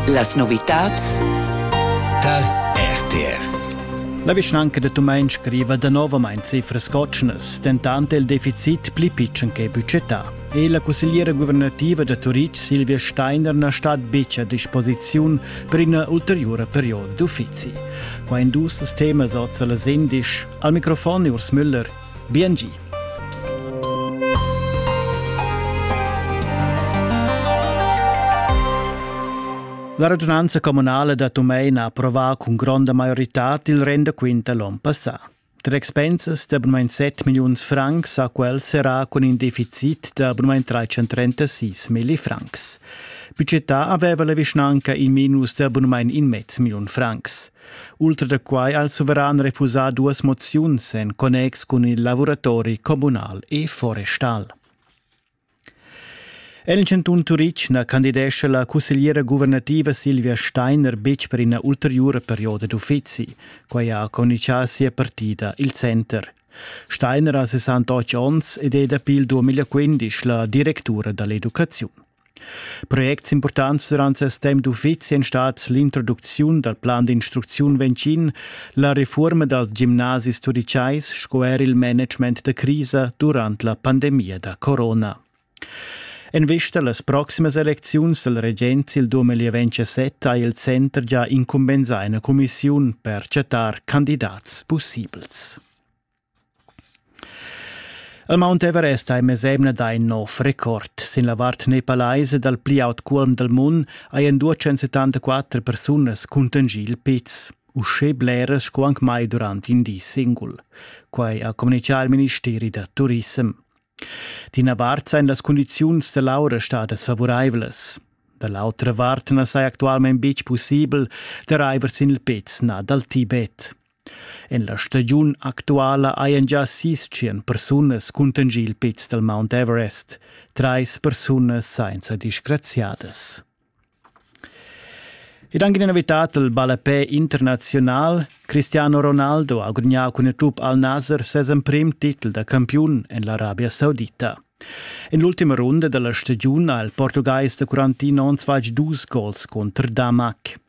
Las novitads tar RTR. La vischnanca de Tumein scriva danovamain cifras cotschnas, dentant il deficit pli pitschen che budgetà. E la cussegliera guvernativa da Turitg, Silvia Steiner, na stat betg a disposiziun per ina ulteriura perioda d'uffizi. Qua in dus temas oz alla Sendisch. Al microfon Urs Müller Biengi. La radunanza communale da Tumein ha approvato con gronda maiorità il rendaquint l'on passà. Tra expensas de abonament 7 milions francs a quel serà con in deficit de abonament 336 milli francs. Budgetà aveva la vischnanca in minus de abonament in mezzo milion francs. Ultra da quai ha il suveran refusà duas moziuns en connex cun il lavuratori communal e forestal. En il cantun Turitg na candidescha la cussegliera guvernativa Silvia Steiner betg per ina ulteriura perioda d'uffizi. Quai ha communitgà sia partida, il Center. Steiner ha 68 onns ed è dapi il 2015 la directura da l'educaziun. Projects importants durant ses temp d'uffizi èn stats l'introducziun dal plan d'instrucziun vencin, la refurma dals gimnasis turitgais sco er il management da crisa durant la pandemia da corona. En vista a las proximas elecziuns dal regent il 2027 ha il center già incumbensà ina cumissiun per chattar candidats pussibels. El Mount Everest ha ei mesemna dà in nov record. Sin la vart nepalaisa dal pli aut cuolm dal mund hajan 274 persunas cuntanschì il piz. Uschè bleras sco anc mai durant in di singul. Quai ha communitgà il ministeri da turissem. D'ina vart sain las cundiziuns da l'aura stadas favuraivlas. Da l'autra vart na saja actualmain betg pussibel da raiver sin il piz nà dal Tibet. En la stagiun actuala hajan gia sis tschient persunas cuntanschì il piz dal Mount Everest, trais persunas sainza disgraziadas. Ed anche in invitato al ballapè internazional, Cristiano Ronaldo ha gudagnà cun il club Al Nasser ses emprim titel da campiun en l'Arabia Saudita. En l'ultima runda della stagione ha il portugais da Quarantino onns fatg dus gols contro Damac.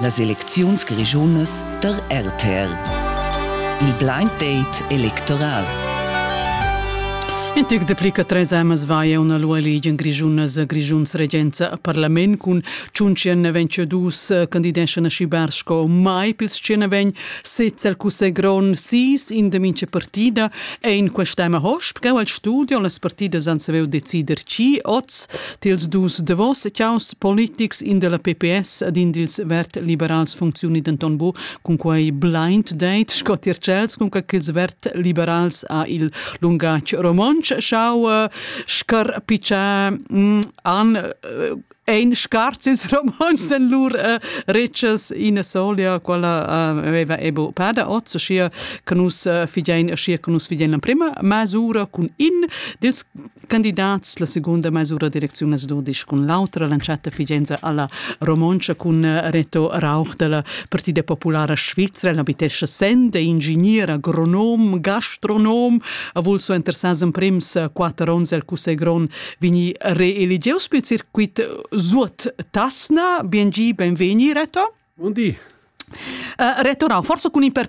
Las elecziuns grischunas tar RTR. Il blind date electoral. In tec dapli che tres amas vaia una lua ligen grischunas grischuns regenza a parlament cun tschunchen ventsche dus candideschan a schibar sco mai pils tschena vegn sez el cussegl grond sis in de minche partida e in quest'ema hosp cheu al studio las partidas han saviu decider chi oz Tils dus davos chaus politics, in della PPS ed in dils vert-liberals funcziuni denton bu cun quei blind date sco tier Chels, cun quels vert-liberals ha il lungatg romontsch schau eh, scarpicciar mm, an eh, ein scarts ils romontschs en lur uh, retschas ina solia quella uh, aveva ebo pada oz schi che nus uh, fidein schi che nus fidein la prima masura cun in dils Candidats la segunda mesura direcziun as dudisch cun l'autra l'entschatta figenza alla Romontscha cun Reto Rauch della Partida Populara Svizra. El abitescha Sende, ingegner, agronom, gastronom, ha vul so interessas in prims quatter ons el cussegl grond vegni reeligius pel circuit Suot Tasna. Biengi, benvegni Reto. Buondì. Uh, Reto Rau, forse con imperpare